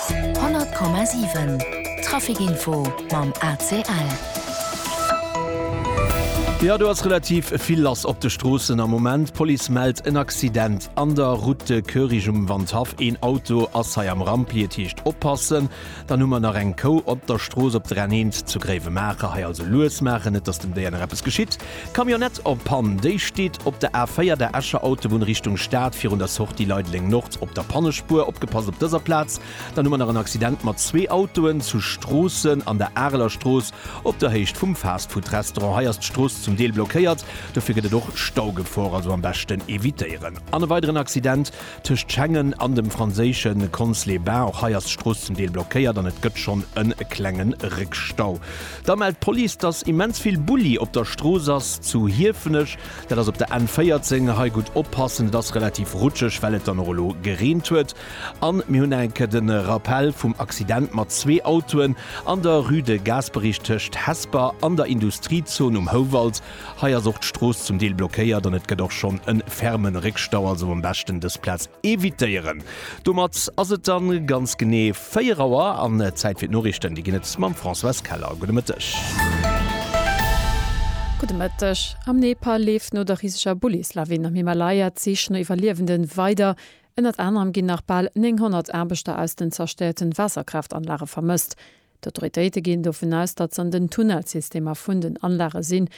100,7 Trafic Info mam ACL. Jo do ass relativ vill lass op de Stroossen am Moment. D'Police mellt en Accident an der Route de Koerich um Wandhaff. Een Auto ass hei am Rampli, et heescht oppassen. Dann hu mer nach eng Kou op der Strooss op der N1 zu Gréiwemaacher. Hei also lues maachen, net datt dem Déier nach eppes geschitt. Camionnette en panne, déi steet op der A4, der Escher Autobunn Richtung Stad, virun der Sortie Leideleng Nord op der Pannespuer. Opgepasst op dëser Plaz, dann hu mer nach en Accident mat zwee Autoen zu Stroossen an der Areler Strooss op der Héicht vum Fastfood-Restaurant. Hei ass d'Strooss zum Deel blockéiert, dofir gëtt et och Staugefor, also am beschten evitéieren. An e weideren Accident Tëscht Schengen an dem franséische Cons-les-Bains, och hei ass d'Strooss zum Deel blockéiert an et gëtt schonn e klenge Réckstau. Da mellt d'Police, dass immens vill Bulli op der Strooss ass zu Hiefenech. Dat ass op der N 14. Hei gutt oppassen, et ass relativ rutscheg, well et dann och elo gereent huet. A mir hunn enk de Rappell vum Accident mat zwee Autoen an der Rue de Gasperich tëscht Hesper an der Industriezon um Houwald. Hei ass och d'Strooss zum Deel blockéiert an et gëtt och schonn en fermen Réckstau, also am beschten dës Plaz evitéieren. Domat ass et dann ganz genee 4 Auer an Zäit fir d'Noriichten. Déi ginn et mam Françoise Keller. Gudde Mëtteg. Gudde Mëtteg. Am Nepal leeft no der riseger Bullislawin am Himalaya d'Sich no Iwwerliewende weider. Ënnert anerem ginn nach bal 900 Aarbechter aus den zerstéierten Waasserkraaft-Anlage vermësst. D'Autoritéite ginn dovun aus, datt s'an den Tunnelsystemer vun den Anlage sinn.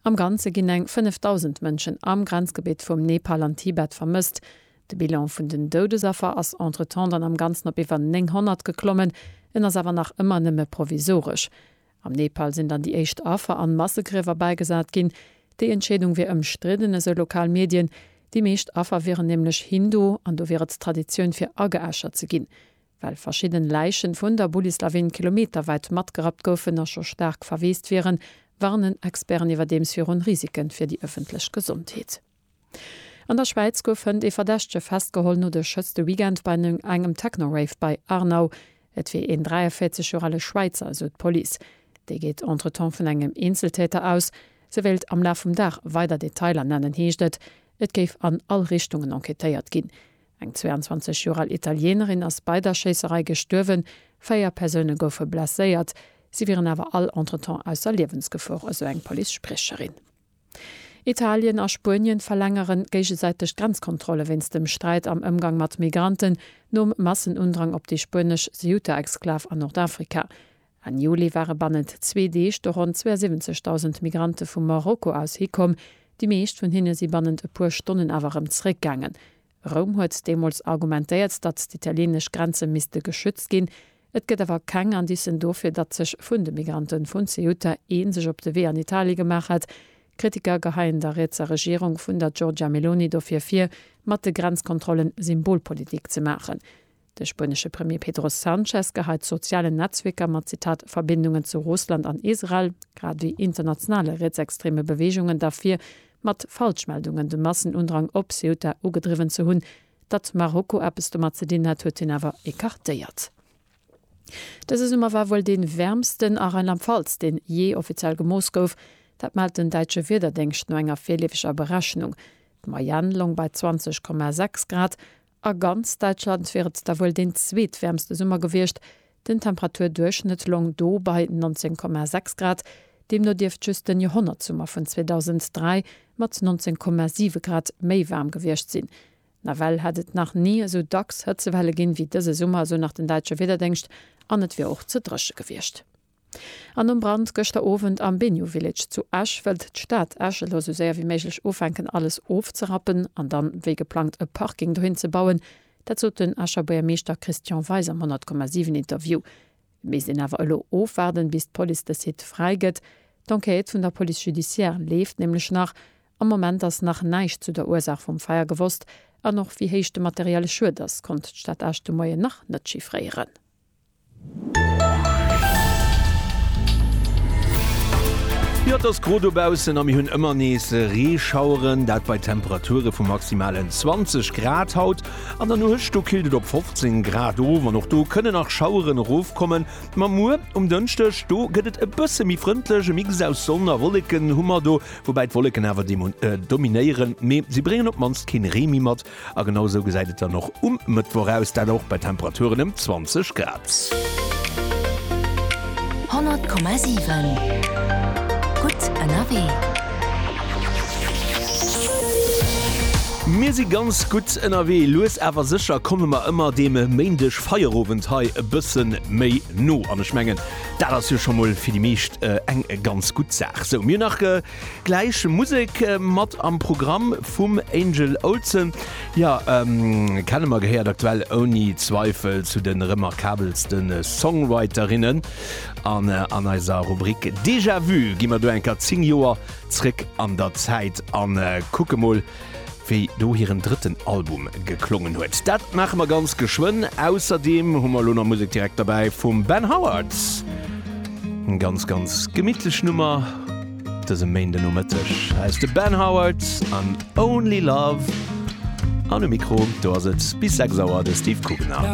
Am Ganze ginn eng 5.000 Mënschen am Grenzgebitt vum Nepal an Tibet vermësst. De Bilan vun den Doudesaffer ass entretemps dann am Ganzen op iwwer 900 geklommen. En ass awer nach ëmmer nëmme provisoresch. Am Nepal sinn dann déi éischt Affer an Massegriewer bäigesat ginn. Déi Entscheedung wier ëmstridden, esou lokal Medien. Déi meescht Affer wieren nämlech Hindu an do wier et Traditioun fir ageäschert ze ginn. Well verschidden Läichen vun der Bullislawin kilometerwäit matgerappt goufen a scho staark verweest wieren, warnen Experten iwwerdeems virun Risiken fir déi ëffentlech Gesondheet. An der Schwäiz gouf hënt ee Verdächtege festgeholl no de Schëss de Weekend bei engem Techno-Rave bei Arnau. Et wier een 43 Joer ale Schwäizer, esou d'Police. Déi geet entretemps vun engem Eenzeltäter aus. Se wéilt am Laf vum Dag weider Detailer nennen, heescht et. Et géif an all Richtungen enquêtéiert ginn. Eng 22 Joer al Italienerin ass bei der Schéisserei gestuerwen, véier Persoune goufe blesséiert, si wieren awer all entretemps ausser Liewensgefor, esou eng Police-Spriecherin. Italien a Spuenien verlängere géigesäiteg d'Grenzkontrolle wéinst dem Sträit am Ëmgang mat Migranten, nom Massenundrang op déi spuenesch Ceuta-Exklav an Nordafrika. Enn Juli ware bannent zwee Deeg do ronn 72.000 Migrante vu Marokko aus hikomm. Déi meescht vun hinne si bannent e puer Stonnen awer erëm zeréckgaangen. Roum huet deemools argumentéiert, datt d'italienesch Grenze misste geschützt ginn. Et gëtt awer keng Indicen dofir, datt sech vun de Migrante vun Ceuta ee sech op de Wee an Italie gemaach hätt. Kritiker geheien der rietser Regierung vun der Giorgia Meloni dofir vir, mat de Grenzkontrollen Symbolpolitik ze maachen. De spuenesche Premier Pedro Sanchez geheit d'sozialen Netzwierker mat, Zitat, Verbindungen zu Russland an Israel, grad ewéi internationale rietsextreme Beweegungen derfir, mat Falschmeldungen de Massenundrang op Ceuta ugedriwwen ze hunn. Datt Marokko eppes domat ze dinn hätt, huet hien awer ecartéiert. Dëse Summer war wuel dee wäermsten a Rheinland-Pfalz, deen jee offiziell gemooss gouf. Dat mellt den däitsche Wiederdéngscht no enger virleefeger Berechnung. D'Moyenne loung bei 20,6 Grad. A ganz Däitschland wier et da wuel deen zweetwäermste Summer gewiescht, den Temperaturduerchschnëtt loung do bei 19,6 Grad. Deemno dierft just den Joerhonnertsummer vun 2003 mat 19,7 Grad méi waarm gewiescht sinn. Nawell hätt et nach ni esou dacks Hëtzewelle ginn, wéi dëse Summer, esou nach den däitsche Wiederdéngscht, an et wier och ze dréche gewiescht. An nom Brand gëschter Owend am Bennu Village zu Esch wëllt d'Stad Esch elo sou séier wéi méiglech ufänken alles ofzerappen an dann wéi geplangt e Parking dohin ze bauen. Dat sot den Escher Buergermeeschter Christian Weis am 100,7 Interview. Et misst een awer elo ofwaarden, bis d'Police de Site fräi gëtt. D'Enquête vun der Police judiciaire leeft nämlech nach. Am Moment ass nach näischt zu der Ursaach vum Feier gewosst an och wéi héich de materielle Schued ass, konnt d'Stad Esch de Moien nach net chiffréieren. Jo, et ass gro dobaussen a mir hunn ëmmer nees Reeschaueren, dat bei Temperature vu maximalen 20 Grad. Haut an der Nuecht do killt et op 15 Grad of an och do kënne nach Schaueren erofkommen. Ma muer um Dënschdeg do gëtt et e bësse méi frëndlech, e Mix aus Sonn a Wolleken hu mer do, woubäi d'Wolleken awer dominéieren, mee si bréngen op d'mannst keen Ree méi mat. A genau esou gesäit et dann och um Mëttwoch aus, dat och bei Temperaturen ëm 20 Grad. 100,7 Gutt ënnerwee. Mir si ganz gutt ënnerwee. Lues awer sécher komme mer ëmmer deem Méindeg Feierowend hei e bësse méi no. An ech mengen, dat ass jo scho mol fir déi meescht eng ganz gutt Saach. Sou, mir hunn nach. Gläich Musek mat am Programm vum Angel Olsen. Jo, Kennemer gehéiert aktuell ouni Zweifel zu de remarkabelste Songwriterinnen. An an eiser Rubrik Déjà-vu gi mer do eng Kéier 10 Joer zréck an der Zäit a kucke mol, wéi do hiren drëtten Album geklongen huet. Dat maache mer ganz geschwënn. Ausserdeem hu mer elo nach Musek direkt derbäi vum Ben Howard. Eng ganz, ganz gemittlech Nummer dëse Méindenomëtteg. Hei ass de Ben Howard an Only Love. An um Mikro do ass et bis 6 Auer de Steve Kugener.